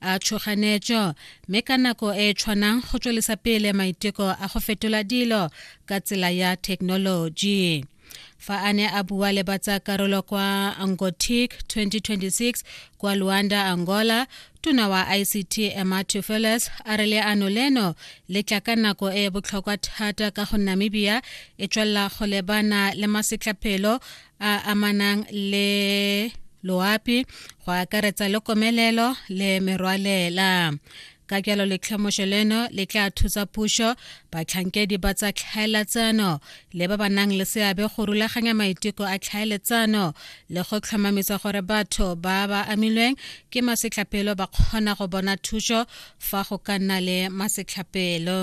a tšhoganetšo mme ka nako e e tshwanang go tswelisa pele maiteko a go fetola dilo ka tsela ya thekenoloji fa a ne a bua le batsa karolo kwa angotic 2026 kwa luanda angola tona wa ict emma tufeles a re leano leno le tla ka nako e e botlhokwa thata ka go namibia e tswelela go lebana le masetlapelo a amanang le loapi go akaretsa le komelelo le merwalela ka jalo letlhomošo leno le tla thusa pušo batlhankedi ba tsa tlhaeletsano le ba ba nang le seabe go rulaganya maiteko a tlhaeletsano le go tlhomamisa gore batho ba ba amilweng ke masetlhapelo ba kgona go bona thušo fa go ka nna le masetlhapelo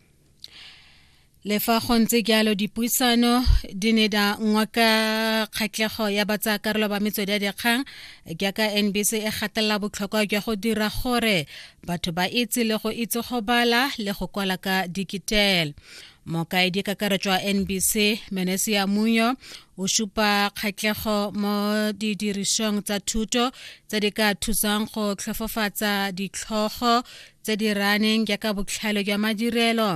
le fa go ntse jalo dipuisano di ne da ngwa ka kgatlhego ya batsayakarolo ba metswedi ya dikgang jaaka nbc e gatelela botlhokwa jwa go dira gore batho ba itse le go itse go bala le go kwala ka digital mokaedi kakaretso wa nbc menesia munyo o supa kgatlhego mo didirisong tsa thuto tse di ka thusang go tlhofofatsa ditlhogo tse di raneng jaaka botlhale jwa madirelo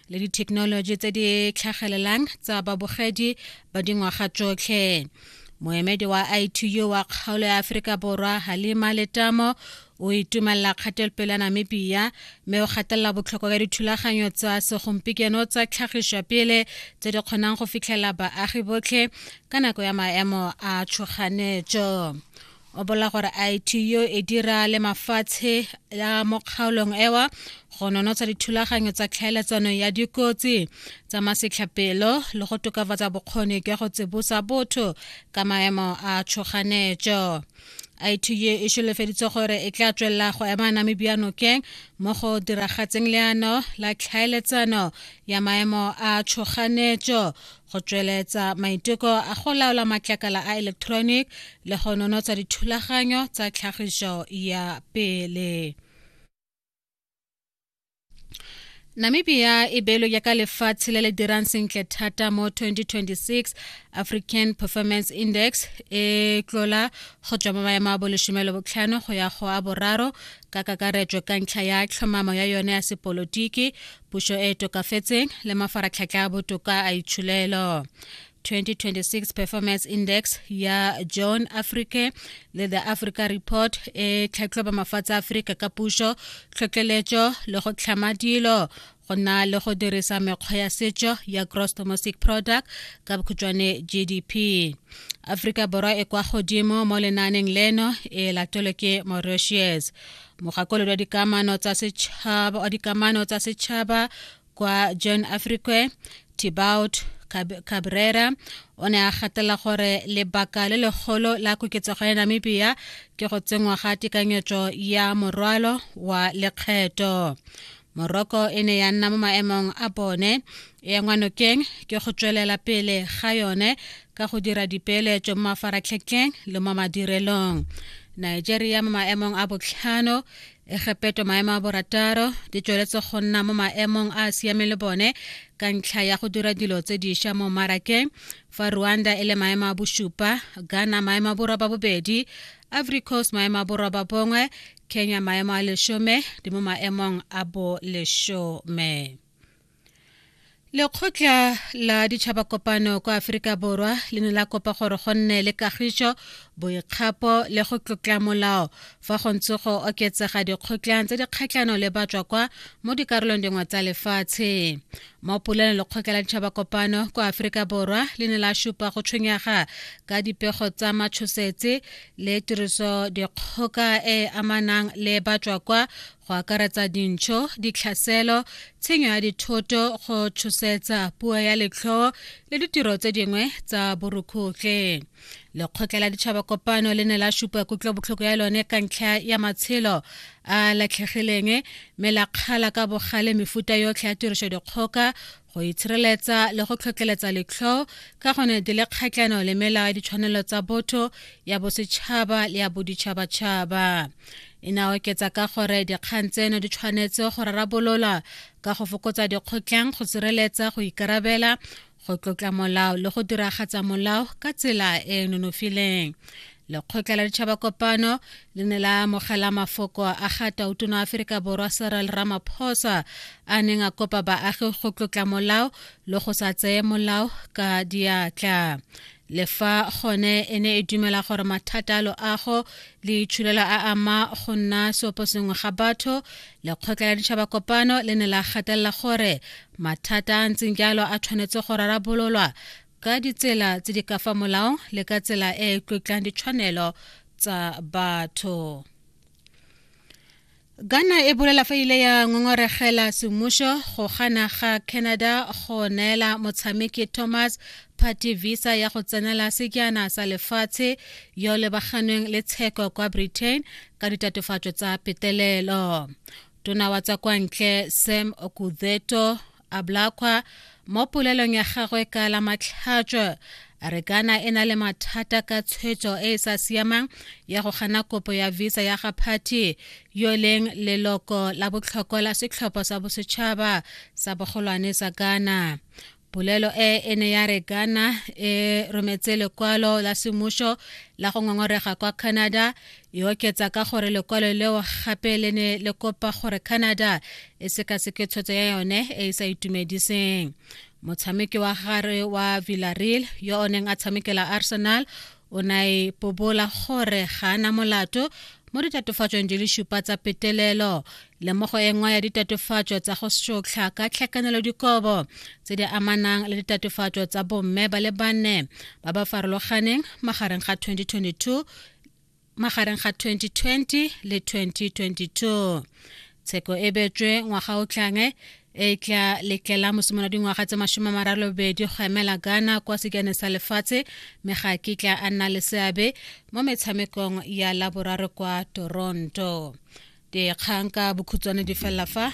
le dithekenoloji tse di tlhagelelang tsa babogedi ba dingwaga tsotlhe moemedi wa itu wa kgaolo ya aforika borwa halima letamo o itumelela kgatelopele ya namibia mme o gatelela botlhokwa ka dithulaganyo tsa segompieno tsa tlhagišwa pele tse di kgonang go fitlhelela baagi botlhe ka nako ya maemo a tshoganetso o bola gore ITU e dira le mafatshe ya mo kgaolong ewa go nonotsa dithulaganyo tsa tlhaeletsano ya dikotsi tsa masetlhapelo le go tokafatsa bokgoni jwa go tsibosa botho ka maemo a tshoganetso ITU e solofeditse gore e tla tswelela go ema Namibia nokeng mo go diragatseng leano la tlhaeletsano ya maemo a tshoganetso go tsweletsa maiteko a go laola matlakala a electronic le go nonotsa dithulaganyo tsa tlhagiso ya pele namibia e beelo yaka lefatshe le le dirang sentle thata mo 2026 african performance index e tlola go tswa mo maemo a bolesome le botlhano go ya go a boraro ka kakaretso ka ntlha ya tlhomamo ya yone ya sepolotiki pušo e e tokafetseng le mafaratlhatlha a botoka a itsholelo 2026 performance index ya john africa le the africa report e tlhatlhoba mafatshe a aforika ka pušo tlhotlheletšo le go tlhama dilo go na le go dirisa mekgwa ya setšo ya gross domestic product ka bokhutšwane gdp aforika borwa e kwa godimo mo lenaaneng leno e latelwe ke mauritius mogakolodi wa dikamano tsa setšhaba wa dikamano tsa setšhaba kwa john afrique tibaut cabrera o ne a gatela gore lebaka le legolo la koketsego ya namibia ke go tsenngwa ga tekanyetso ya morwalo wa lekgetho moroko e ne ya nna mo maemong a bone e ya ngwanokeng ke go tswelela pele ga yone ka go dira dipeeletso mo mafaratlhetlheng le mo madirelong nigeria mo maemong a botlhano egepeto maemo a borataro di tsweletse go nna mo maemong a a siameng le bone ka ntlha ya go dira dilo tse diša mo mmarakeng fa rwanda e le maemo a bosupa ghana maemo a boroba bobedi ivory coast maemo a boroba bongwe kenya maemo a leshome di mo maemong a bo leshome lekgotla la ditšhabakopano kwa aforika borwa le ne la kopa gore go nne le kagišo boikgapo le go tlotla molao fa go ntse go oketsega dikgotlang tse di kgatlhano le batswa kwa mo dikarolong dingwe tsa lefatshe mo polelong lekgotla la ditšhabakopano kwa aforika borwa le ne la šupa go tshwenyega ka dipego tsa matshosetse le tiriso dikgoka e e amanang le batswa kwa go akaretsa dintšho ditlhaselo tshenyo ya dithoto go tshosetsa puo ya letlhoo le ditiro tse dingwe tsa borukhutlhe lekgotla la ditšhaba kopano le ne la supa kutlobotlhoko ya lone ka ntlha ya matshelo a latlhegileng mme la kgala ka bogale mefuta yotlhe ya tiriso dikgoka go itshireletsa le go tlhotlheletsa letlho ka gone di le kgatlhano le melao ya ditshwanelo tsa botho ya bosetšhaba le ya boditšhabatšhaba e ne a oketsa ka gore dikgang tseno di tshwanetse go rarabolola ka go fokotsa dikgotlhang go sireletsa go ikarabela go tlotla molao le go diragatsa molao ka tsela e e nonofileng lekgotla la ditšhaba kopano le ne la amogela mafoko a ga tautona wa aferika borwa serel ramaphosa a neng a kopa baagi go tlotla molao le go sa tseye molao ka diatla le fa gone e ne e dumela gore mathata a loago le itshulelo a ama go nna seopo sengwe ga batho lekgotla la ditšhaba kopano le ne la gatelela gore mathata a ntseng jalo a tshwanetse go rarabololwa ka ditsela tse di ka fa molao le ka tsela e e tlotlang ditshwanelo tsa batho Ghana e bolela fa ile ya ngongoregela semmušo go gana ga Canada go neela motshameki Thomas Party visa ya go tsenela sekjana sa lefatshe yo lebaganweng le tsheko kwa Britain ka ditatofatso tsa petelelo. Tona wa tsa kwa ntle Sam Okudzeto a blakgwa mo polelong ya gagwe ka la matlhatšo a re kana e na le mathata ka tshwetso e e sa siamang ya go gana kopo ya visa ya ga party yo e leng leloko la botlhokwa la setlhopho sa bosetšhaba sa bogolwane sa kana polelo e e ne ya re kana e rometse lekwalo la semmušo la go ngongorega kwa canada e oketsa ka gore lekwalo leo gape le ne le kopa gore canada e sekaseke tshwetso ya yone e e sa itumediseng motshameki wa gare wa villareal yo o neng a tshamekela arsenal o na e pobola gore ga a na molato mo ditatofatsong di le šupa tsa petelelo le mo go engwa ya ditatofatso tsa go sotlha ka tlhakanelo dikobo tse di amanang le ditatofatso tsa bomme ba le banne ba ba farologaneng magareng ga 2022 magareng ga 2020 le 2022 tsheko e betswe ngwaga o tlange e tla letlela mosimolo dingwaga tse masome a maralobedi go emela ghana kwa sekane sa lefatshe mme ga ke tla a nna le seabe mo metshamekong ya laboraro kwa toronto dikgang ka bokhutswane di felela fa